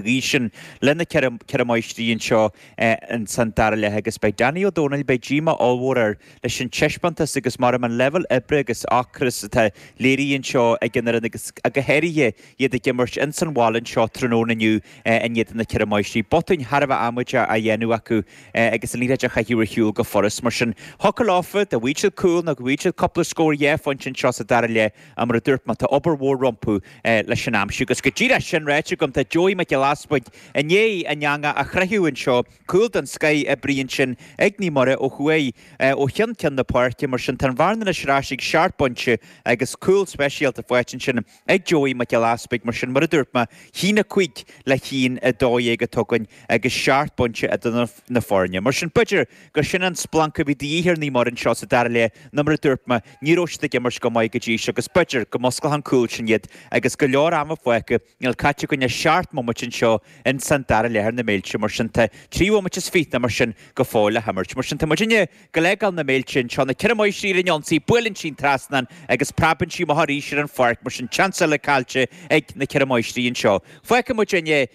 dhiaidh sin, le na ceithre, ceithre máistrí anseo in san dara leath agus beidh Danny Ó Dónaill, beidh díomá ollmhór air leis an teispeántas agus maram an leibhéal oibre agus ocras atá léirithe anseo ag an fhoireann agus go háirithe iad ag imirt in san bhaile anseo tráthnóna inniu in éadan na ceithre máistrí, botúin thar a bheith amaideach á dhéanamh acu agus an liathróid á chaitheamh ar shiúl go furast mar sin thiocfadh leofa a bheith ag fáil cúl nó a bheith ag fáil cúpla scór dhá phointe anseo sa dara leath. a mar a dúirt mé, tá obair mhór rompu le sin a aimsiú. Agus go díreach sin ráite agam, tá Joey Mac Giolla Easbuig i ndiaidh an eanga a chroitheadh anseo, cúl den scoith oibrithe ansin ag Naomh Muire ó thuaidh ó chionn ceann na páirce, mar sin tá an bhearna anois ar ais ag seacht bpointe agus cúl speisialta faighte ansin ag Joey Mac Giolla Easbuig mar sin mar a dúirt mé, a haon a cúig le a haon a dó dhéag atá againn agus seacht bpointe eadar na foirne mar sin b'fhéidir gur sin an splanc a bhí de dhíth ar Naomh Muire anseo sa dara leath nó mar a dúirt mé, ní raibh siad ag imirt go maith go dtí seo agus b'fhéidir go musclóidh an cúl sin iad agus go leor ama fágtha, níl caite againn ach seacht mbomaite anseo in san dara leath ar na Méilte mar sin tá trí bhomaite is fiche nó mar sin go fóill le himirt mar sin tá muidinne ag gabháil a fhágáil na Méilte anseo, na Ceithre Máistrí ar an ionsaí, buaileann sí an trasnán agus preabann sí amach arís ar an pháirc mar sin seans eile caillte ag na Ceithre Máistrí anseo. Fágfaidh muidinne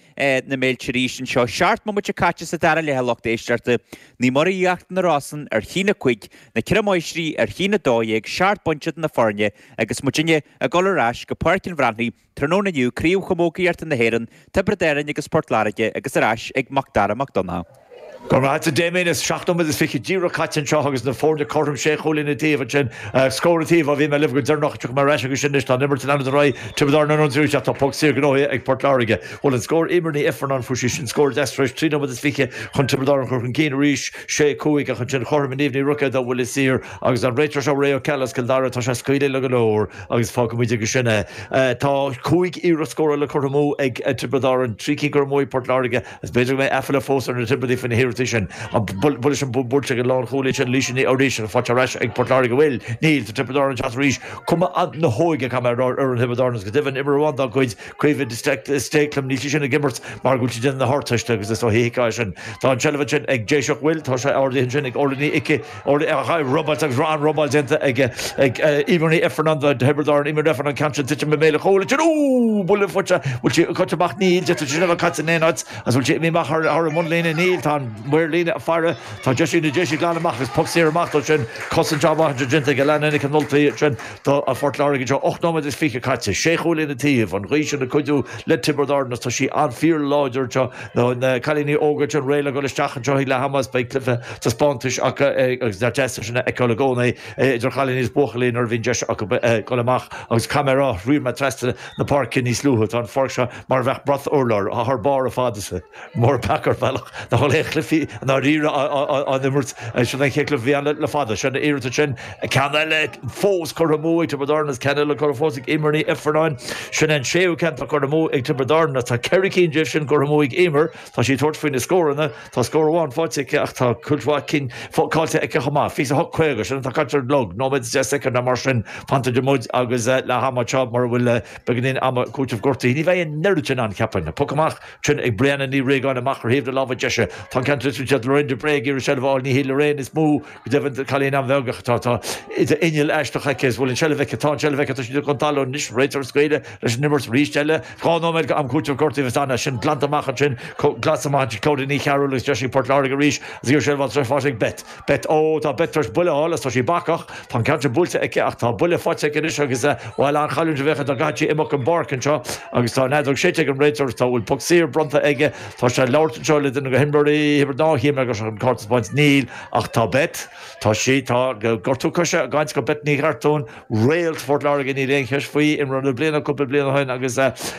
na Méilte arís anseo. Seacht mbomaite caite sa dara leath a lucht éisteachta Naomh Muire Íochtar na Rosann ar a haon a cúig, na Ceithre Máistrí ar a haon a dó dhéag, seacht bpointe eadar na foirne agus muidinne ag dul ar ais go Páirc an Bhreathnaigh tráthnóna inniu, Craobh Chamógaíochta na hÉireann, Tiobraid Árann agus Port Láirge agus ar ais ag Mac Dara Mac Donncha. Go raibh agat, Damien. Is seacht nóiméad is fiche díreach caite anseo agus na foirne cothrom sé chúilín an taobh. Ansin, scór ina dtaobh. Má bhíonn mé libh go deireanach, tiocfaidh mé ar ais agus sin anois. Tá an imirt in ainm is an Rí, Tiobraid Árann ar an dtríú leath. Tá puc saor gnóthaithe ag Port Láirge. Bhuail an scór Eimear Ní Ifearnáin fúithi. Sin scór deas tar éis trí nóiméad is fiche chun Tiobraid Árann a chur chun cinn arís, sé, cúig, ach ansin chothromaigh Niamh Ní Rucáin de bhuille saor agus an réiteoir seo Ray Ó Ceallaigh as Cill Dara. Tá sé ag scaoileadh le go leor agus fágfaimid agus sin é. Tá cúig iarracht scórála curtha amú ag Tiobraid Árann, trí cinn curtha amú ag Port Láirge. Is b'fhéidir go mbeidh aiféala fós ar na Tiobraidigh faoi na hiarrachtaí sin. An bhfuil leis an bpúirt ag an lánchúlaí sin Laoise Ní Fhoraoise, faighte ar ais ag Port Láirge? Bhuel, níl. Tá Tiobraid Árann ag teacht arís. Cuma na hóige, caithfidh mé a rá, ar fhoireann Thiobraid Árann agus go deimhin imreoir amháin dá gcuid, Caoimhe de Stéiclim, níl sí sin ag imirt mar go bhfuil sí ag déanamh na hArdteiste agus is ó thuithíoch é sin. Tá an tseilbh ansin ag Déiseach, bhuel, tá sé ardaithe ansin ag Orla Ní Icí, Óir chaith robáilt agus raibh an-robáil déanta ag Eimear Ní Ifearnáin do Thiobraid Árann Imirreacht an ceann sin tuitim i mbéal an chúil a Tír. Úúúú! Buille fuaite! Bhfuil sí curtha amach? Níl. D'fhéadfadh sí sin a bheith caite in aon áit. Agus bhfuil sí imithe amach thar an mbunlíne? Níl. Tá an maor líne ag faire. Tá deis ag na Déise glanadh amach agus poc saor amach dó sin. Cosaint shábháilte déanta ag Alannah Nic an Ultaigh sin do Phort Láirge anseo. Ocht nóiméad is fiche caite. Sé chúilín an taobh an ghaoth ina cuidiú le Tiobraid Árann agus tá sí sin fíorláidir anseo. Nó na cailíní óga sin réidh le dhul isteach anseo ag leath ama is beidh cluiche taispeántais acu agus nach deas é sin a fheiceáil i gcónaí idir chailíní is buachaillí nuair a bhíonn deis acu dul amach agus caithfidh mé a rá shiúil mé trasna na páirce níos luaithe tá an pháirc seo mar a bheadh brat urláir thar barr ar fad is mór an peaca ar bhealach nach bhfuil aon chluichí i ndáiríre á n-imirt sin an chéad cluiche a bhí ann le fada san iarracht sin Ceann eile fós curtha amú ag Tiobraid Árann. Is ceann eile curtha amú ag Emer Ní Ifearnáin. Sin an séú ceann atá curtha amú ag Tiobraid Árann agus tá ceithre cinn díobh sin curtha amú ag Emer. Tá sí ag tabhairt faoi na scóranna. Tá scór amháin faighte aici ach tá cuid mhaith cinn caillte aici chomh maith. 28:50, sin atá caite ar an gclog, nóiméad is deich soicind nó mar sin fanta idir muid agus leath ama anseo mura bhfuil beagáinín ama cúitimh gortaithe. Ní bheidh an oiread sin ann cheapfainn. Poc amach sin ag Briana Ní Riagáin amach ar thaobh na láimhe deise. Tá an ceann buailte ag Lorraine de Brae ag iarraidh seilbh a fháil. Ní hí Lorraine is mó Go deimhin, cailín an-bheag ach tá inneall aisteach aici, is bhfuil an tseilbh aici, tá an tseilbh aici, tá sí idir dhá thalamh anois, réiteoir is gaire leis an imirt, arís eile, dhá nóiméad d'am cúiteamh gortaithe agus d'fhan sinn glanta amach ansin, glanta amach ansin, Clodagh Ní Chearúill agus Déise Phort Láirge arís agus iarr sé ar Bhal tar eis bháis ag Beth, Beth, ó tá Beth tar eis buille a fháil agus tá sí bacach, tá an ceann sin buailte aici ach tá buille faighte aici anois agus bhuel an-chailliúint a bheadh ann dá gcaithfeadh sí imeacht ón bpáirc anseo agus tá an fheadóg séidte ag an réiteoir agus tá, bhfuil poc saor bronnta aige, tá sé ag labhairt anseo le duine de na himreoirí, Thiobraid Árann, chím le gur seo an cárta is baint, níl. Ach tá Beth, tá sí, tá, gortú coise éicint do Beth Ní Chartúin, réalt Phort Láirge níl aon cheist faoi, imreoir na bliana cúpla bliain ó shin agus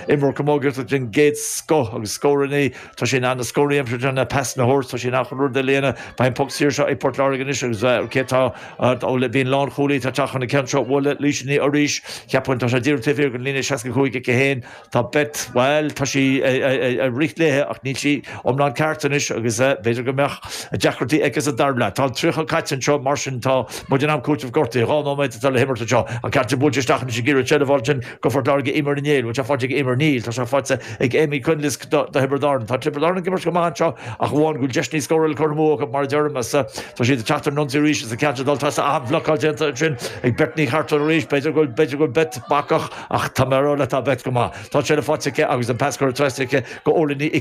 imreoir camógaíochta den gcéad scoth agus scóranna, tá sí in ann na scóranna a aimsiú tá sí in ann pasanna a thabhairt, tá sí in ann chuile rud a dhéanamh, beidh an poc saor seo ag Port Láirge anois agus cé atá, ó le, b'í an lánchúlaí atá ag teacht chun an ceann seo, bhuel Laoise Ní Fhoirís, cheapfainn tá sé díreach taobh thiar den líne 65 aici féin, Tá Beth, bhuel, tá sí ag rith léithi ach níl sí iomlán ceart anois agus b'fhéidir go mbeadh deacrachtaí aici sa dara leath. Tá an tríocha caite anseo mar sin tá muid in am cúiteamh gortaithe. Dhá nóiméad atá le himirt anseo. An ceann buailte isteach anois ag iarraidh seilbh a fháil ansin go Phort Láirge Emer Ní Néill, bhuel tá faighte ag Emer? Níl, tá sé faighte ag Eimear Nic an Luain do Thiobraid Árann. Tá Tiobraid Árann ag imirt go maith anseo ach amháin go bhfuil deiseanna scórála curtha amú acu mar a deirim is tá siad ag teacht ar an ionsaí arís is an ceann sin ag dul trasna ach an-bhlocáil déanta ansin ag Beth Ní Chartúin arís b'fhéidir go bhfuil Beth bacach Ach tá mé a rá leat, tá Beth go maith. Tá sé faighte aici agus an pas curtha trasna aici go Orla Ní i.